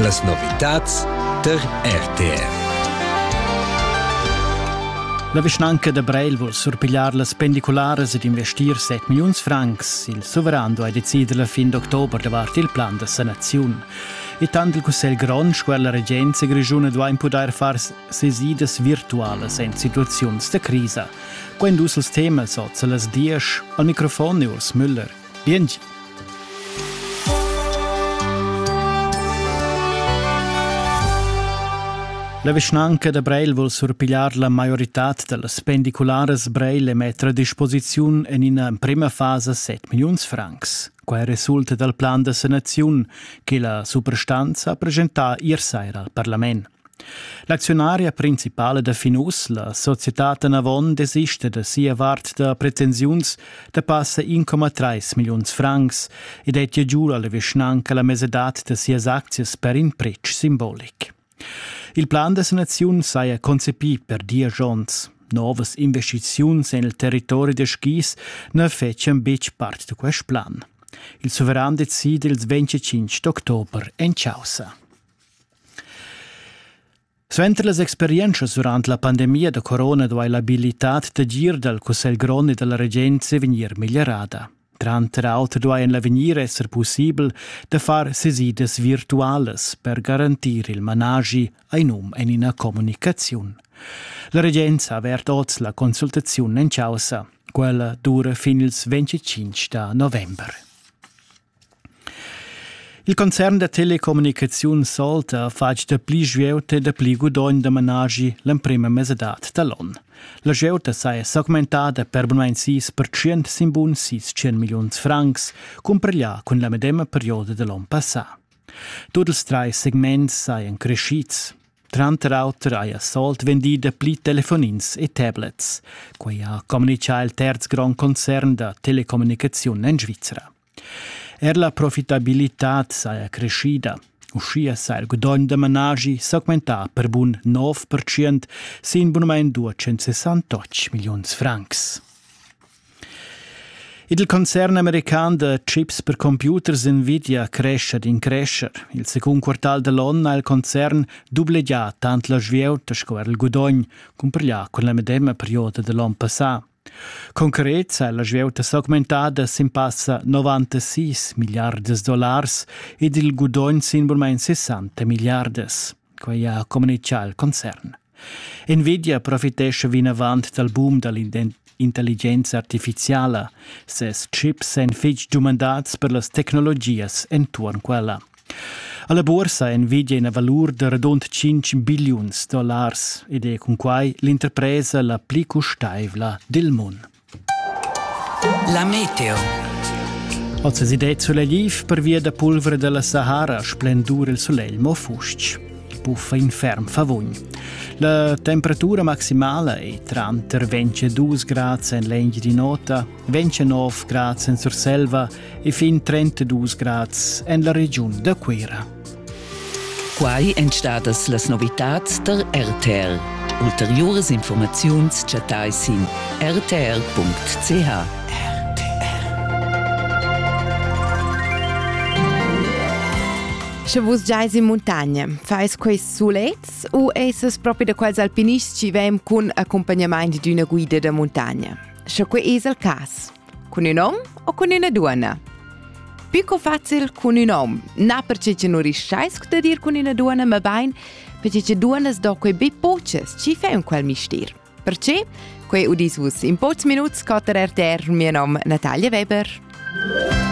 Las novitads tar RTR. La vischnanca da Breil vul surpigliar las pendicularas ed investir 7 milliuns francs. Il suveran duai decider la fin d'october davart il plan da sanaziun. E tant il Cussegl grond sco la regenza grischuna duain pudair far sesidas virtualas en situaziuns da crisa. Quando els temas oz a las 10 al microfon e Urs Müller. Biengi. La vischnanca da Breil vul surpigliar la maioritad da las pendicularas Breil e metter a disposiziun en ina emprima fasa 7 milliuns francs. Quai resulta dal plan da sanaziun che la suprastanza ha presentà ier saira al parlament. L'acziunaria principala da fin uss, la societad Anavon, desista da sia vart da pretensiuns da passa 1,3 milliuns francs ed è giu alla vischnanca la mesedad da sias aczias per in pretsch simbolic. Il plan da sanaziun saja concepì per diesch onns. Novas investiziuns en il territori da skis na fetschian betg part da quest plan. Il suveran decide ils 25 d'october en Chausa. Suenter las experientschas durant la pandemia da corona duai l'abilitad d'agir dal cussegl grond e da la regenza vegnir meglierada. Tranter auter duai en l'avegnir esser pussibel da far sesidas virtualas per garantir il managi ein um en ina communicaziun. La regenza ha avert oz la consultaziun en causa. Quella dura fin ils 25 da november. Il concern da telecommunicaziun Solta ha fatg dapli svieuta e dapli gudogn da managi l'emprema mesadad da l'on. La svieuta saja s'augmentada per bunmain sis percent sin bun sis tschen milliuns francs, cumpareglià cun la medema perioda da l'on passà. Tut ils trais segments sajan creschids. Tranter auter haja Salt vendì dapli telefonins e tablets. Quai ha communitgà il terz grond concern da telecommunicaziun en Svizra. Er la profitabilitad saja creschida. Uschia sa il gudogn da managi s'augmentà per bun 9% sin bunamain 268 milliuns francs. Il concern american da chips per computers Nvidia crescha d'in crescher. Il secund quartal da l'onn ha il concern dublegià tant la svieuta sco er il gudogn cumparglià cun la medema perioda da l'onn passà. Concret ha la svieuta s'augmentada sin passa 96 milliardas dollars ed il gudogn sin burmain 60 milliardas. Quai ha communitgà il concern. Nvidia profitescha vinavant dal boom da l'intelligenza artifiziala. Ses chips èn fitg dumandats per las tecnologias enturn quella. Alla borsa è Nvidia ina valur da radund 5 billiuns dollars ed è cun quai l'interpresa la pli custaivla dil mund. La meteo. Oz es idea sulegliv pervia da pulvra dalla Sahara splendur il sulegl mo fustg. Buffa in ferm favugn. La temperatura maximala è tranter 22 grads en l'engi di nota, 29 grads en Surselva e fin 32 grads en la regiun da Cuira. Quai èn stadas las novitads da RTL. Ulteriuras informaziuns chattai sin rtr.ch. Sche vus giais in muntagna, fais quest sulets u essas propi da quels alpinists ci vem cun accompagnament d'una guida da muntagna? Sche quei es il cas, Cun ün hom o cun üna duonna? Più co facil cun ün hom. Na perche che nu riusceis da dir cun üna duonna, ma bain perche che duonnas do quei be poches, chi fa ün quel mistier. Perché? Quei udis vus in pocs minuts scotter RTR, mio nom Natalia Weber.